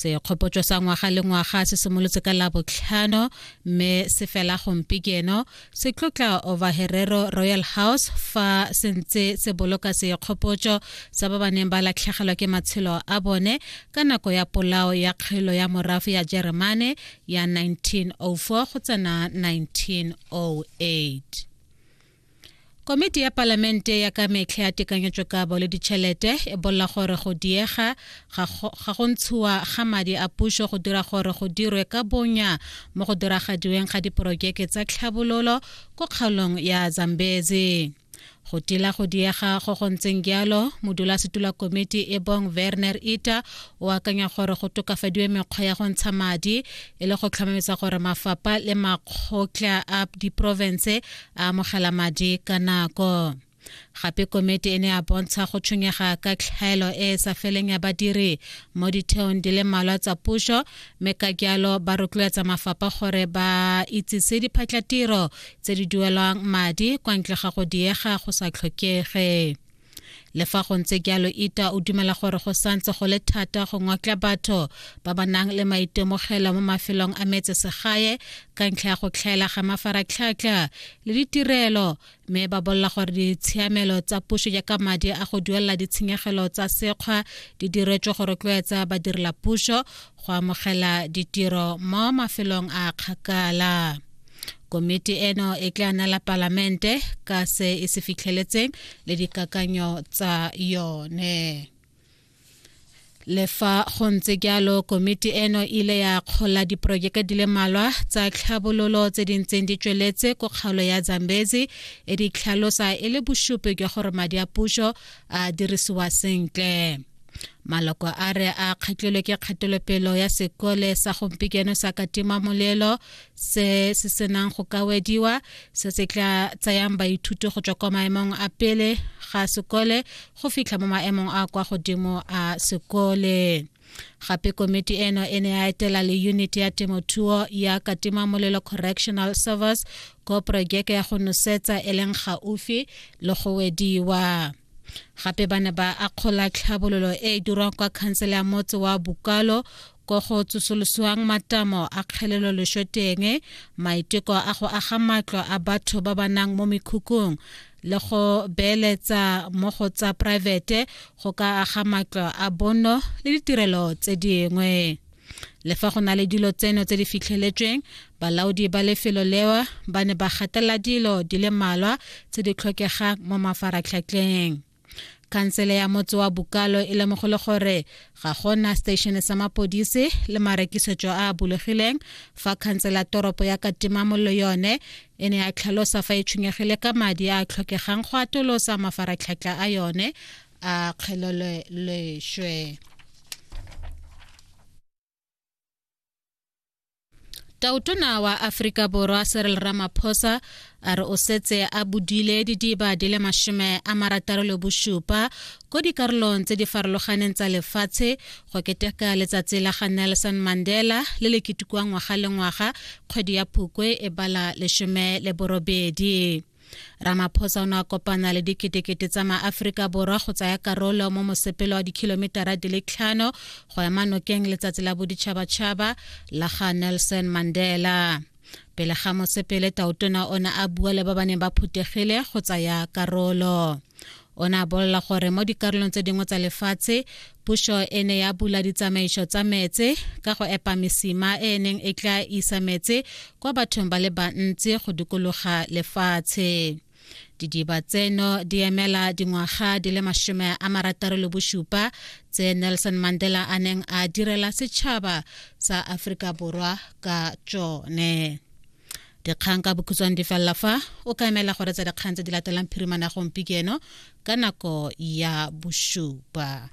sekgopotso sa ngwaga le ngwaga se simolotse ka labotlhano mme se fela gompieno se tlotla over herero royal house fa se ntse se boloka sekgopotso sa ba ba neng ba latlhegelwa ke matshelo a bone ka nako ya polao ya kgelo ya morafe ya jeremane ya 1904 go tsena 1908 Komiti ya Palamente ya ka metlha ya tekanyetsokabo le ditšhelete e bolela gore go diega ga go ntshiwa ga madi a puso go dira gore go dirwe ka bonya mo go diragadiweng ga diporojeke tsa tlhabololo ko kgaolong ya Zambezi. Go tila go diega go go ntseng jalo, modulasetula komiti e bong Werner Ita o akanya gore go tokafadiwe mekgwa ya go ntsha madi e le go tlhomamisa gore mafapa le makgotla a diprovense a amogela madi ka nako gape komiti e ne ya bontsha go tshwenyega ka tlhaelo e e sa feleng ya badiri mo ditheong di le mmalwa tsa puso mme ka jalo ba rotloetsa mafapha gore ba itsise diphatlatiro tse di duelwang madi kwa ntle ga go diega go sa tlhokege le fa go ntse jalo ita o dumela gore go santse go le thata go ngotla batho ba ba nang le maitemogelo mo mafelong a metse segae ka ntlha ya go tlhaela ga mafaratlhatlha le ditirelo mme ba bolela gore ditshiamelo tsa puso jaaka madi a go duelela ditshenyegelo tsa sekgwa di diretswe go rotloetsa badirela puso go amogela ditiro mo mafelong a kgakala komiti eno e tla nala palamente ka se e se fitlheletseng le dikakanyo tsa yone le fa go ntse jalo komiti eno e ile ya kgola diporojeke di le malwa tsa tlhabololo tse di ntseng di tsweletse ko kgaolo ya zambezi e di tlhalosa e le bosupi jwa gore madi a puso a dirisiwa sentle maloko a re a kgatlilwe ke kgatelopelo ya sekole sa gompieno sa katima molelo se se senang go kawediwa se se tla tsayang baithuti go tswa kwa maemong a pele ga sekole go fitlha mo maemong a kwa godimo a sekole gape komiti eno e ne ya etela le unit ya temothuo ya katima molelo correctional service ko porojeke ya go nosetsa e leng gaufi le go wediwa gape ba ne ba akgola tlhabololo e e dirwang kwa khansele ya motse wa bokalo ko go tsosolosiwang matamo a kgelelo lesho teng maiteko a go aga matlo a batho ba ba nang mo mekhukhung le go beeletsa mo go tsa poraefete go ka aga matlo a bono le ditirelo tse dingwe Le fa go na le dilo tseno tse di fitlheletsweng, balaodi ba lefelo lewa ba ne ba gatelela dilo di le malwa tse di tlhokegang mo mafaratlhatlheng. Khansele ya motse wa Bukalo e lemogole gore ga gona station sa mapodisi le marekisetso a a bulegileng fa khansele ya toropo ya Katimamollo yone e ne ya tlhalosa fa e tshwenyegile ka madi a a tlhokegang go atolosa mafaratlhatlha a yone a kgelelwe lešwe tautona wa aforika borwa serel ramaphosa a re o setse a bodile didiba di le mashome a marataro le bosupa ko dikarolong tse di farologaneng tsa lefatshe go keteka letsatsi la ga nelson mandela le le ketekiwang ngwaga le ngwaga kgwedi ya phukwe e bala lesome le borobedi ramaphosa o ne a kopana le diketekete tsa maaforika borwa go tsaya karolo mo mosepelo wa dikhilometara di le tlhano go ema nokeng letsatsi la boditšhabatšhaba la ga nelson mandela pele ga mosepele taotona o ne a bua le ba ba neng ba phuthegile go tsaya karolo o ne a bolela gore mo dikarolong tse dingwe tsa lefatshe puso e ne ya bula ditsamaiso tsa metse ka go epa mesima e e neng e tla isa metse kwa bathong ba le bantsi go dikologa lefatshe didiba tseno di emela dingwaga di le masome a marataro le bosupa tse nelson mandela a neng a direla setšhaba sa aforika borwa ka tsone dikgang ka bokhutshwane di felela fa o ka emela gore tsa dikgang tse di latelang phirimana gompieno ka nako ya bosupa